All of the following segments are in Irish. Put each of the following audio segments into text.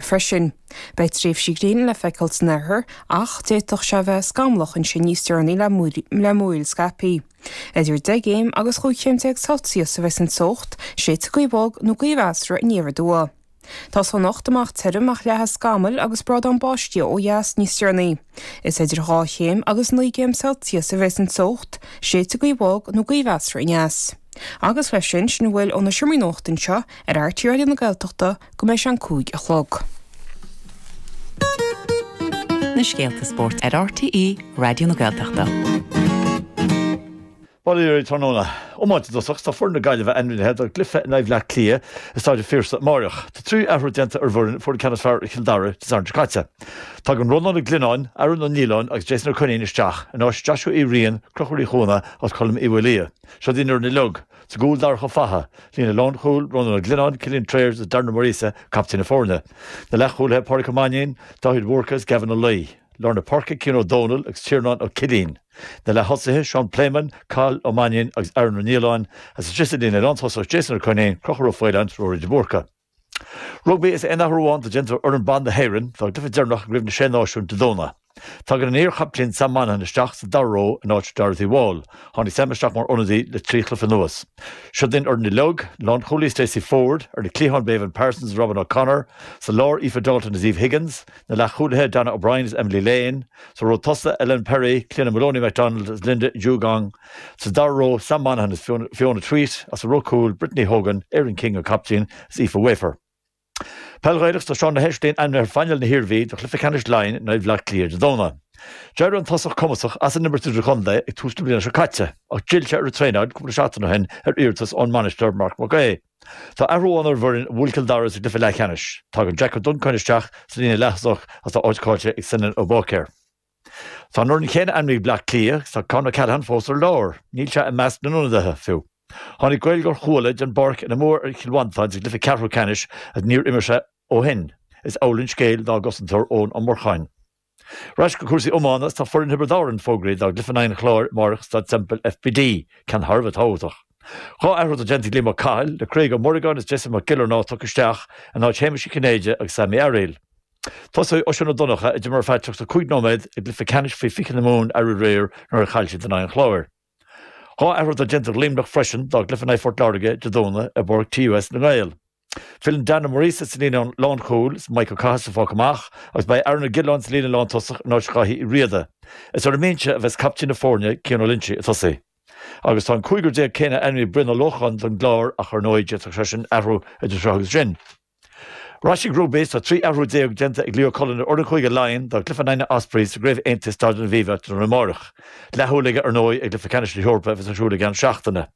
freisin. Beidh tréimhsí gréine le feiceáil san oirthear ach d'fhéadfadh sé a bheith scamallach ansin níos deireanaí le múraíl scaipthe. Idir 10 gcéim agus 15 chéim Celsius a bheidh san teocht, séidfidh gaoth bhog nó gaoth mheasartha aniar aduaidh. Tosóidh anocht amach tirim ach leathfaidh scamaill agus brádán báistí ó dheas níos deireanaí. Is idir dhá chéim agus naoi gcéim Celsius a bheas an teocht, séidfidh gaoth bhog nó gaoth mheasartha aneas. Agus leis sin, sin a bhfuil ó na Seomraí Nuachta anseo ar RTÉ Raidió na Gaeltachta go mbeidh sé an cúig a chlog. na scéalta spóirt ar RTÉ Raidió na Gaeltachta. Bail ó Dhia oraibh tráthnóna. Iomáint i dtosach. Tá foireann na Gaillimhe ainmnithe dá gcluiche in aghaidh Bhleá Cliath i Staid an Phiarsaigh amáireach. Tá trí athrú déanta ar an bhfoireann a fuair an ceann is fearr ar Chill Dara Dé Sathairn seo caite. Tagann Rónán Ó Glionnáin, Aaron Ó Nialláin agus Jason Ó Coinín isteach in áit Joshua Uí Riain, Chonchúir Uí Chuana agus Colm Uí Mhaolmhuaidh. Seod í an fhoireann uilig, sa gcúl Darach Ó Fathaigh, líne lánchúil, Rónán Ó Glionnáin, Cillian Trayers agus Darren Ó Muiríosa, captaen na foirne. Na leathchúlaithe, Pádraig Ó Mainnín, Dáithí de Búrca agus Gavin Ó Laoi. lár na páirce, Cian Ó Domhnaill agus Tiarnán Ó Cillín. Na leath-thosaithe, Seán Pléimeann, Cathal Ó Mainnín agus Aaron Ó Nialláin, is an triúr sa líne lántosach, Jason Ó Coinín, Conchúr Ó Faoláin, Ruairí de Búrca. Rugbaí Is aon athrú amháin atá déanta ar fhoireann ban na hÉireann dá gcluiche deireanach i gCraobh na Sé Náisiún Dé Domhnaigh. Tagann an iarchaptaen Sam Monaghan isteach sa dara ró in áit Dorothy Wall. Tháinig Sam isteach mar ionadaí le trí chluiche anuas. Seod í an fhoireann uilig, lánchúlaí Stacey Flood, ar na cliatháin Béibhinn Parsons is Robyn O'Connor, sa lár Aoife Dalton is Eve Higgins, Na leathchúlaithe Dannah O'Brien is Emily Lane, sa ró tosaigh, Ellena Perry, Cliodhna Moloney-MacDonald is Linda Djougang, sa dara ró, Sam Monaghan is Fiona Tuite, agus sa ró cúil, Brittany Hogan, Erin King, an captaen, is Aoife Wafer. Peil Ghaelach is tá Seán Ó hEislin ainmnithe ar phainéal na hIarmhí do Chluiche Ceannais Laighean in aghaidh Bhleá Cliath Dé Domhnaigh. D'éirigh an tosach cumasach as an imirt idirchontae ag tús na bliana seo caite ach d'fhill sé ar an traenáil cúpla seachtain ó shin ar iarratas ón mbainisteoir Mark McHugh. Tá athrú amháin ar an bhfoireann a bhuail Cill Dara sa gcluiche leathcheannais. Tagann Jack Ó Duncain isteach sa líne leath-thosach agus tá áit cáillte ag Senan Ó Báicéir. Tá an fhoireann chéanna ainmnithe ag Bleá Cliath agus tá Con Ó Ceallacháin fós ar lár. Níl sé i measc na n-ionadaithe, fiú. Tháinig Gaeilgeoir Chuala den bpáirc ina mbua ar Chill Mhantáin sa gcluiche ceathrú ceannais agus níor imir sé ó shin. Is amhlaidh an scéal dá gcosantóir Eoin Ó Murcháin. Ar ais go cúrsaí iomána, tá foireann Thiobraid Árann fógraithe dá gcluiche in aghaidh an Chláir amárach i Staid Semple FBD, ceann thar a bheith tábhachtach. Dhá athrú atá déanta ag Liam Ó Cathail, le Craig Ó Muireagáin is Jason Mac Giollarnáth tugtha isteach in áit Shéamuis Uí Chinnéide agus Sam Uí Fhearaíl. Tosóidh Oisín Ó Donncha, a d'imir ar feadh 35 nóiméad i gcluiche ceannais faoi 20 na Mumhan aréir nuair a chaill siad in aghaidh an Chláir. Dhá athrú atá déanta ag Luimneach freisin dá gcluiche in aghaidh Phort Láirge Dé Domhnaigh i bPáirc TUS na nGael. Filleann Dan Ó Muiríosa sa líne lánchúil is Mike Ó Cathasaigh fágtha amach agus beidh Aaron Ó Giolláin sa líne lántosach in áit Dháithí Uí Riada. Is ar an mbinse a bheas captaen na foirne, Cian Ó Loinsigh, ag tosaí agus tá an cúigear déag céanna ainmnithe ag Brian Ó Lócháin don gClár ach ar ndóigh d'fhéadfadh seisean athrú idir seo agus sin. Cúrsaí rugbaí is tá 13 athrú déanta ag Leo Cullen ar fhoireann Chúige Laighean don gcluiche in aghaidh na nOspreys sa gCraobh Aontaithe i Staid an Aviva tráthnóna amáireach. Leathshúil aige ar ndóigh ar gCluiche Ceannais na hEorpa a bheas ar siúl i gceann seachtaine.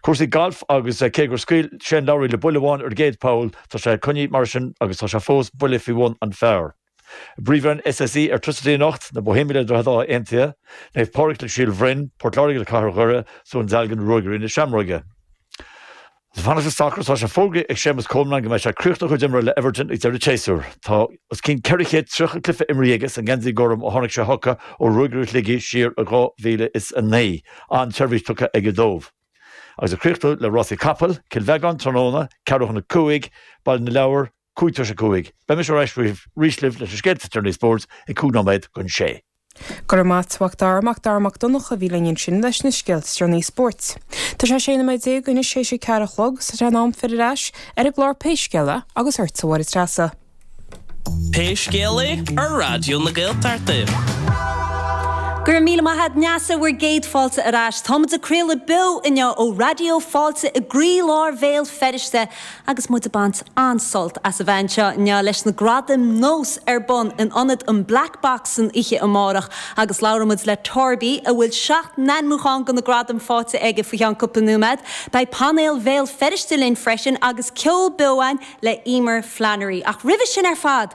Cúrsaí gailf agus cé gur scaoil Shane Lowry le buille amháin ar an gcéad poll, tá sé ag coinneáil mar sin agus tá sé fós buille faoi bhun an phar. bPríomhroinn SSE Airtricity anocht, na Bohemians le Droichead Átha Aontaithe, Naomh Pádraig le Síol Bhroin, Port Láirge le Cathair Dhoire, is Dún Dealgan le Ruagairí na Seamróige. Is ag fanacht le sacar tá sé fógraithe ag Séamus Coleman go mbeidh sé ag críochnú a chuid imeartha le Everton ag deireadh an tséasúir. Tá os cionn 430 cluiche imrithe aige sa ngeansaí gorm ó tháinig sé chuca ó Ruagairí Shligigh siar i 2009, an-tseirbhís tugtha aige dóibh. Agus ag críochnú le rásaí capaill, Cill Bheagán tráthnóna, ceathrú chun a 5, Baile na Lobhar, cúig tar éis a cúig. Beidh muid ar ais arís libh leis na scéalta is torthaí spóirt ag cúig nóiméad chun sé. Go raibh maith agat a Mhac Dara Mac Dara Mac Donncha a bhí linn ansin leis na scéalta is torthaí spóirt. Tá sé sé nóiméad déag anois théis a ceathair a chlog is tá sé in am filleadh ar ais ar an gclár Pé Scéal É agus ortsa a Mháire Treasa. Pé Scéal É ar Raidió na Gaeltachta. Go raibh míle maith agat a Neasa bhur gcéad fáilte ar ais. Táimid ag craoladh beo inniu ó Raidió Fáilte i gcroí lár Bhéal Feirste Agus muid ag baint an-sult as a bheith anseo inniu leis na gradaim nós ar bun in ionad an Black Box san oíche amárach agus labhróidh muid le Torby a bhfuil seacht n-ainmniúchán do na gradaim faighte aige faoi cheann cúpla nóiméad. Beidh painéal Bhéal Feirste linn freisin agus ceol beo againn le Eimear Flannery. Ach roimhe sin ar fad!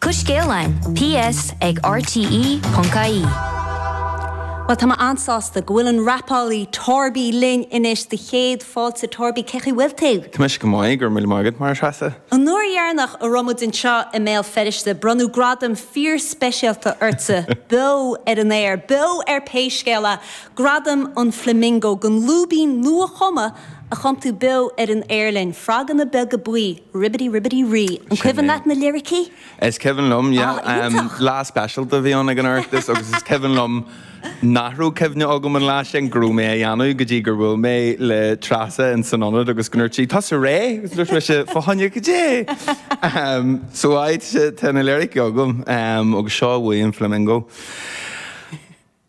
Do scéal linn, PS ag RTE.ie. Bhuel, tá mé an-sásta go bhfuil an rapálaí Torby linn anois do chéad Fáilte. Torby, cén chaoi a bhfuil tú? Tá mise go maith, go raibh míle maith agat, Máire Treasa. An uair dheireanach a raibh muid anseo i mBéal Feirste, bronnadh gradam fíorspeisialta ortsa, beo ar an aer, beo ar pé scéal é, Gradam an Flamingo don lúibín nua-chumtha a chan tú beo ar an aer linn, froganna beaga buí, ribbidi ribbidi rí. An Sin cuimhin é. leat na liricí? Is cuimhin liom, yeah. Ah, Em, iontach. lá speisialta a bhí ann ag an Oireachtas agus is cuimhin liom nach raibh cuimhne agam an lá sin go raibh mé a dhéanamh go dtí gur bhuail mé le Treasa in san ionad agus go ndúirt sí, tusa réidh, agus dúirt mise, fá choinne caidé. Em, so áid se, tá na lyrics agam, em, agus seo a bhuaigh an Flamingo.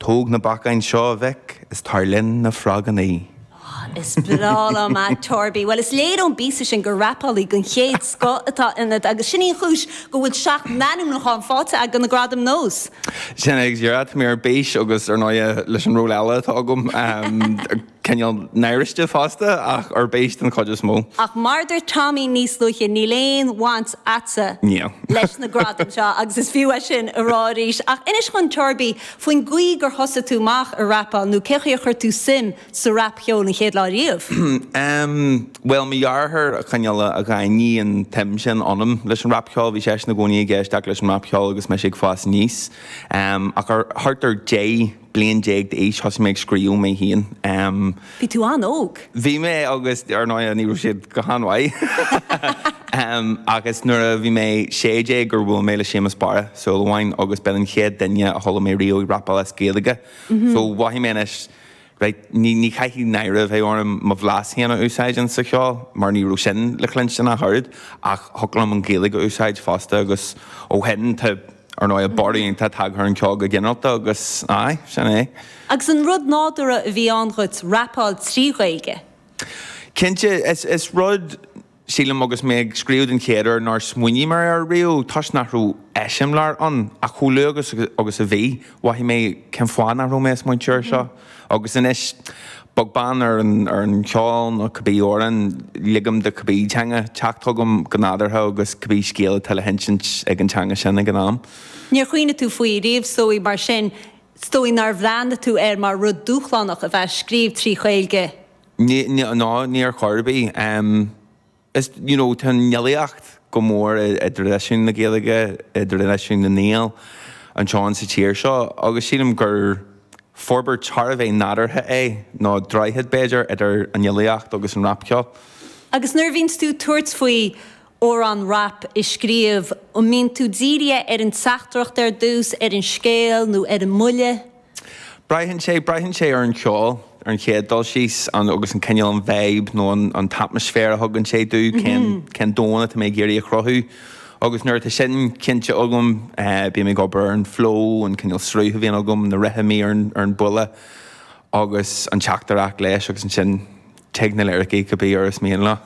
Tóg na beacáin seo a mhic is tar linn na frogannaí. Is breá liom é Torby. Bhuel, is léir ón bpíosa sin gur rapálaí den chéad scoth atá ionat agus sin í an chúis go bhfuil seacht n-ainmniúchán faighte agat do na gradaim nós. Sin é, agus dhera, tá mé ar bís agus, ar ndóighe, leis an ról eile atá agam! cineál náiriste fosta, ach ar bís den chuid is mó. Ach mar a dúirt Tommy níos luaithe, níl aon bhaint a'dsa Níl. leis na gradaim seo agus is fiú é sin a rá arís. Ach inis dhúinn Torby faoin gcaoi gur thosaigh tú amach a' rapáil nó cén chaoi a chuir tú suim sa rap cheol an chéad lá riamh? Ehm, bhuel mo dheartháir a cineál a a dhaingnigh an tsuim sin ionam leis an rap cheol, bhí seisean i gcónaí ag éisteacht leis an rap cheol agus mise ag fás aníos. Ehm, ach ar, thart ar deich, bliain déag d'aois, thosaigh mé ag scríobh mé féin. Bhí tú an-óg. Bhí mé agus, ar ndóigh, ní raibh siad go han-mhaith. Agus nuair a bhí mé sé déag gur bhuail mé le Séamus Barra Súil Amháin agus b'in an chéad duine a chuala mé riamh ag rapáil as Gaeilge. So, mhothaigh mé anois, right, ní, ní chaithfidh náire a bheith orm mo bhlas féin a úsáid ins sa cheol mar ní raibh sin le cluinstin ach oiread ach thiocfadh liom an Ghaeilge a úsáid fosta agus ó shin tá Ar ndóigh, borradh iontach tagtha ar an gceol go ginearalta agus aye, sin é. Agus an rud nádúrtha a bhí ann dhuit rapáil trí Ghaeilge? Cinnte, is rud, sílim, agus mé ag scríobh den chéad uair nár smaoinigh mé air riamh, toisc nach raibh eiseamláir ann, ach chomh luath agus a bhí, mhothaigh mé cén fáth nach raibh mé ag smaointiú air seo? Agus anois, beag beann ar an cheol nó cibé amhrán ligim do cibé teanga teacht chugam go nádúrtha agus cibé scéal atá le hinsint ag an teanga sin ag an am. Níor chuimhnigh tú faoi riamh, is dóigh, mar sin is dóigh nár bhreathnaigh tú air mar rud dúshlánach a bheith ag scríobh trí Ghaeilge? No, níor chor ar bith. Is you know tá an fhilíocht go mór i i dtraidisiún na Gaeilge, i dtraidisiún na nGael anseo sa tír seo agus sílim gur forbairt thar a bheith nádúrtha é, nó droichead b'fhéidir idir an fhilíocht agus an rapcheol. Agus nuair a bhíonns tú ag tabhairt faoi amhrán rap a scríobh, an mbíonn tú dírithe ar an teachtaireacht ar dtús, ar an scéal nó ar an mbuille? Braitheann sé, braitheann sé ar an cheol ar an chéad dul síos an agus an cineál an vibe nó an an t-atmaisféar a thugann sé domh cén cén domhan atá mé ag iarraidh a chruthú agus nuair atá sin cinnte agam bím ag obair ar an flow an cineál sruth a bhíonn agam na rithimí ar an ar an buille agus an teachtaireacht leis agus ansin Tig na liricí cibé uair is mian leo.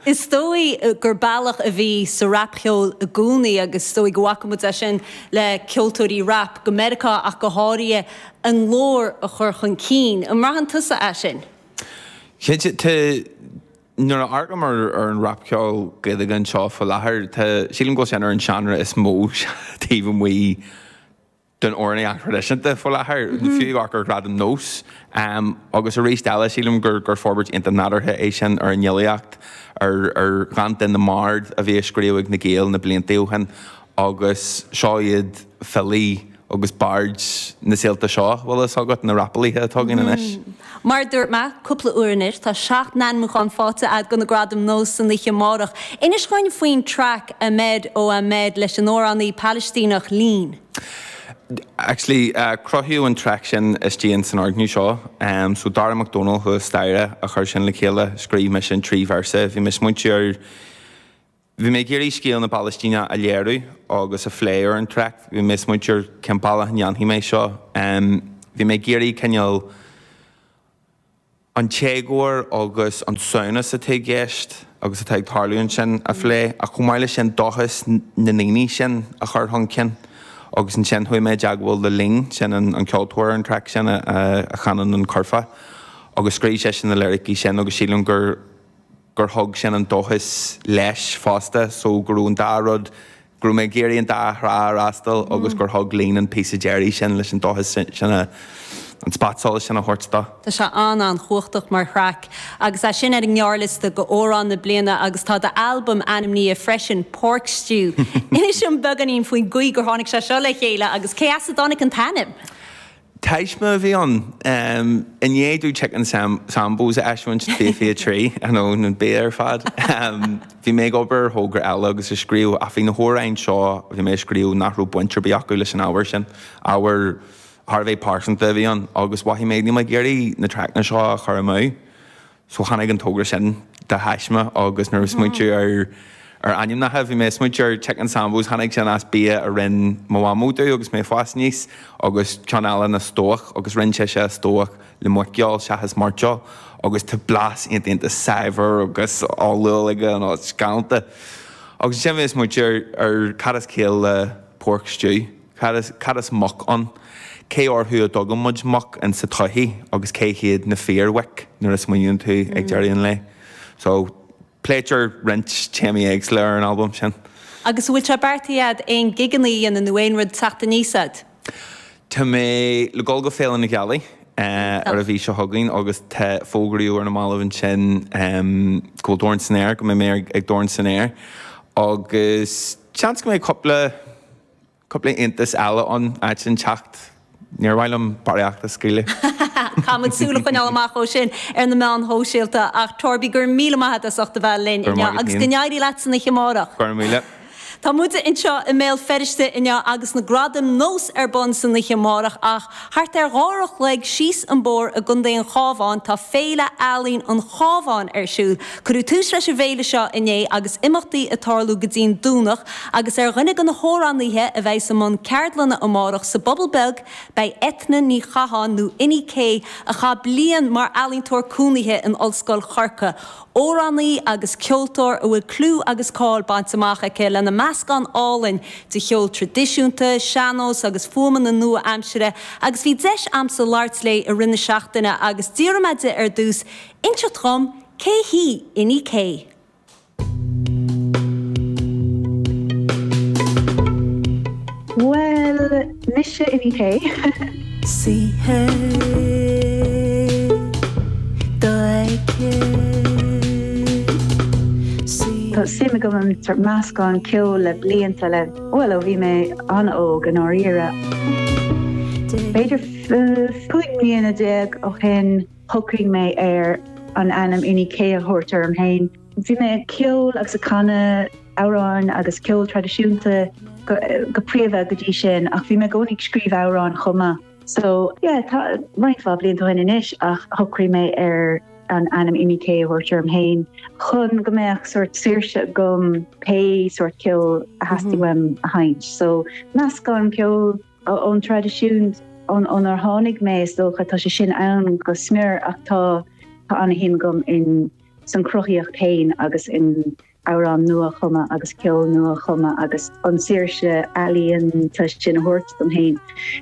Is dóigh gur bealach a bhí sa rapcheol i gcónaí, agus is dóigh go bhfaca muid é sin le ceoltóirí rap, go Meiriceá ach go háirithe, a nglór a chur chun cinn. An mbraitheann tusa é sin? Cinnte. Tá, nuair a amharcaim ar an rapcheol Gaeilge anseo faoi láthair, tá, sílim go bhfuil sé ar an seánra is mó taobh amuigh, den amhránaíocht thraidisiúnta faoi láthair, fiú ag amharc ar Ghradaim NÓS. Agus arís eile sílim gur gur forbairt iontach nádúrtha é sin ar an fhilíocht, ar ar dhánta na mbard a bhí á scríobh ag na Gaeil na blianta ó shin agus seo iad filí agus baird na saolta seo, bhfuil fhios agat, na rapálaithe atá againn anois. Mar a dúirt mé cúpla uair anois tá seacht n-ainmiúchán faighte agat do na Gradaim Nós san oíche amárach. Inis dhúinn faoin traic Ahmed Oh Ahmed leis an amhránaí Palaistíneach Leen. Actually cruthaíodh an traic sin istigh in san fhoirgneamh seo. So Darragh Mac Dónaill thuas staighre a chuir sin le chéile, scríobh mise an trí véarsa. Bhí mé ag smaointiú ar. Bhí mé ag iarraidh scéal na Palaistíne a léiriú agus a phlé ar an traic. Bhí mé ag smaointiú ar cén bealach a ndéanfaidh mé seo. Bhí mé ag iarraidh cineál an t-éagóir agus an samhnas atá i gceist agus atá ag tarlú ansin a phlé, ach chomh maith leis sin dóchas na ndaoine sin a chur chun cinn. Agus ansin chuaigh mé i dteagmháil le Leen, sin an ceoltóir ar an traic sin a chanann an curfá, agus scríobh seisean na liricí sin agus sílim gur. gur thug sin an dóchas leis fosta so go raibh an dá rud, go raibh mé ag iarraidh an dá thrá a fhreastal agus gur thug Leen an píosa deiridh sin leis an dóchas sin a, an spotsolas sin a thabhairt dó. Tá sé an-an-chumhachtach mar thraic agus é sin ar an ngearrliosta do Amhrán na Bliana agus tá do albam ainmnithe freisin, Pork Stew. Inis dom beagáinín faoin gcaoi gur tháinig sé seo le chéile agus cé as a dtáinig an t-ainm? Taisme a bhí ann. I ndiaidh domh Chicken Sambos a eisiúint i bhfiche trí, I know, an bia ar fad! bhí mé ag obair ar thogra eile agus ag scríobh ach bhí na hamhráin seo a bhí mé a scríobh nach raibh baint ar bith acu leis an ábhar sin. Ábhar thar a bheith pearsanta a bhí ann agus mhothaigh mé níl mé ag iarraidh na traiceanna seo a chur amú. So tháinig an togra sin de thaisme agus ag smaointiú ar ar ainmneacha bhí mé ag smaointiú ar Chicken Sambos, tháinig sin as bia a rinne mo mhamó domh agus mé ag fás aníos, agus ceann eile ná stobhach agus rinne sise an stobhach le muiceoil seachas mairteoil agus tá blas iontach iontach saibhir agus olúil aige nó is galánta. Agus ansin bhí mé ag smaointiú ar cad is ciall le pork stew. Cad is, cad is muc ann? Cé orthu a dtugann muid muc in sa tsochaí agus cé hiad na fíormhuic nuair a smaoiníonn tú ag deireadh an lae? So, pléitear roinnt téamaí éagsúla ar an albam sin. Agus an bhfuil sé beartaithe agat aon gigeanna a dhéanamh nó aon rud ag teacht aníos agat? Tá mé le dul go Féile na Gealaí ar an mhí seo chugainn agus tá, fógraíodh ar na mallaibh ansin go bhfuil Dorn San Aer, go mbeidh mé ag Dorn San Aer agus seans go mbeidh cúpla, cúpla iontas eile ann áit inteacht. Níor mhaith liom barraíocht a scaoileadh. Caithfimid súil a choinneáil amach dó sin ar na meáin shóisialta ach Torby go raibh míle maith agat as ucht a bheith linn inniu agus go n-éirí leat san oíche amárach. Go raibh míle. Tá muide anseo i mBéal Feirste inniu agus na Gradaim Nós ar bun san oíche amárach ach. Thart ar dhá uair an chloig síos an bóthar i gContae an Chábháin tá Féile Ealaíon an Chábháin ar siúl. Cuireadh tús leis an bhféile seo inné agus imeachtaí ag tarlú go dtí'n Domhnach agus ar dhuine de na hamhránaíthe a bheidh i mbun ceardlainne amárach sa bPobal Beag beidh Eithne Ní Chatháin nó Inni-K a chaith bliain mar ealaíontóir cónaíthe in Ollscoil Chorca Amhránaí agus ceoltóir a bhfuil clú agus cáil bainte amach aici lena meascán álainn de cheol tradisiúnta, sean-nós agus fuaimeanna nua-aimsire agus bhí deis a'msa labhairt léi i rith na seachtaine agus d'iarr mé di ar dtús inseacht dhom cé hí Inni-K. Bhuel, Mise Inni-K. Tá suim agam i meascán ceoil le blianta le, bhuel, ó bhí mé an-óg i ndáiríre. B'fhéidir cúig mbliana déag ó shin shocraigh mé ar an ainm Inni-K a thabhairt orm féin. Bhí mé ag ceol agus ag canadh amhráin agus ceol traidisiúnta go príomha go dtí sin ach bhí mé i gcónaí ag scríobh amhrán chomh maith. So yeah, tá roinnt mhaith blianta ó shin anois ach shocraigh mé ar an ainm Inni-K a thabhairt orm féin chun go mbeadh sórt saoirse agam pé sórt ceoil a theastaigh uaim a sheinnt. So meascán ceoil ón traidisiún ónár tháinig mé is dócha tá sé sin ann go smior ach tá tá an-shuim agam in sa chruthaíocht fhéin agus in amhráin nua-chumtha agus ceol nua-chumtha agus an tsaoirse ealaíonta sin a thabhairt dom fhéin.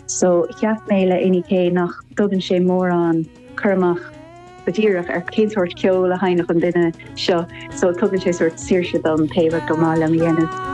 So cheap mé le Inni-K nach dtugann sé mórán cur amach go díreach ar cén sórt ceol a sheinnfeadh an duine seo so tugann sé sórt saoirse dom pé ar maith liom a dhéanamh.